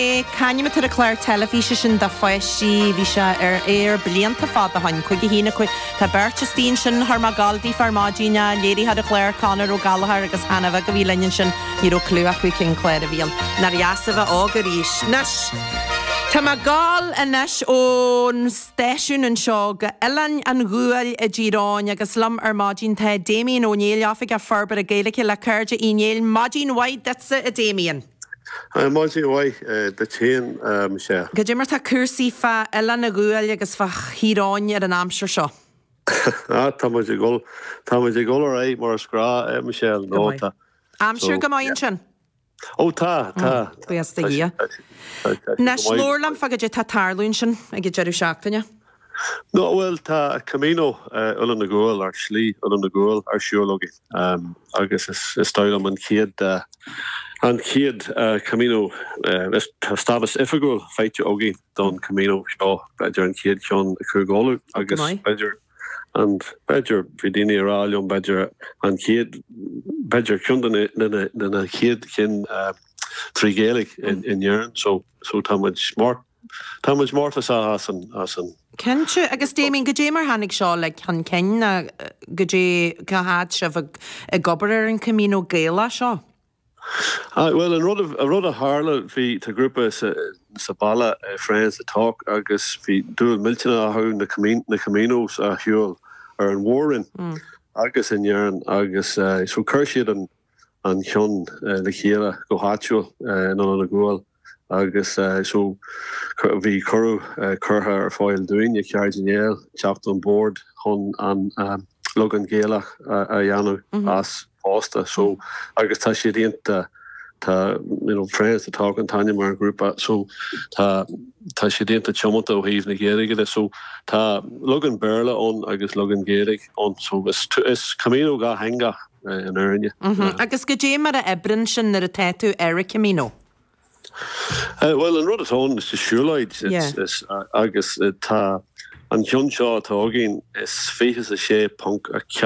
Sea, c'ainm atá ar an chlár teilifíse sin do pháistí? Bhí sé ar aer blianta fada ó shoin, cúig a haon a cúig. Tá beirt istigh ansin thar má Goldie ar maidin a léirigh an clár, Conor Ó Gallagher agus Hannah Bheag a bhí linn ansin. Ní raibh clue acu cén clár a bhí ann. Nár dheas a bheith óg arís. Anois, tá mé gabháil anois ón stáisiún anseo go Oileán an Ghuail i dTír Eoghain agus liom ar maidin tá Damien Ó Néill, Oifigeach Forbartha Gaeilge le Cairde Uí Néill. Maidin mhaith duitse a Damien! Maidin mhaith duit féin. Goidé mar tá cúrsaí fá Oileán a' Ghuail agus fá Thír Eoghain ar an aimsir seo. Á, tá muid ag dhul, tá muid ag dhul ar aghaidh mar is gnách, eh, Michelle, Go nó maith. tá. So, Aimsir go maith yeah. ansin? Ó, tá, tá, tá. Buíochas do Tá sé, Dhia. tá sé, tá sé go Anois, maith, go labhair liom maith. fá goidé tá tarlú ansin ag an deireadh seachtaine. Ná bhuel, tá Camino Oileán an Ghuail, ar Shlí Oileán an Ghuail, ar siúl againn, agus is dóigh liom an chéad, an chéad Camino, tá stádas oifigiúil faighte againn don Camino seo, b'fhéidir an chéad cheann i gCúige Uladh, agus b'fhéidir, an, b'fhéidir, bhí daoine ag rá liom, b'fhéidir an chéad, b'fhéidir ceann de na, de na, de na chéad chinn trí Ghaeilge in Éirinn, so, so tá muid smart. Tá muid mórtasach as sin. Cinnte. Agus Damien, goidé mar tháinig seo le chun cinn ná goidé, cá fhad tá sibh ag ag obair ar an Camino Gaelach seo? Ah, bhuel, an rud a rud a tharla, bhí, tá grúpa sa sa baile, Friends to Talk, agus bhí dúil millteanach acu na Camino na Caminos a shiúl ar an mhór-roinn agus in Éirinn agus so chuir siad an, an ceann le chéile go háitiúil in Oileán an Ghuail agus so bhí cuireadh curtha ar fáil dúinn ag Cairde Uí Néill teacht on board chun an leagan Gaelach a dhéanamh as fosta so agus tá siad iontach tá you know Friends to Talk an t-ainm ar an ghrúpa so tá tá siad iontach tiomanta ó thaobh na Gaeilge de so tá leagan Béarla ann agus leagan Gaeilge ann so is is Camino dhátheangach an fhírinne. Agus goidé mar a oibreann sin nuair atá tú ar an Camino? Bhuel, an rud atá ann sa siúlóid, agus tá an ceann seo atá againn, is 26.4.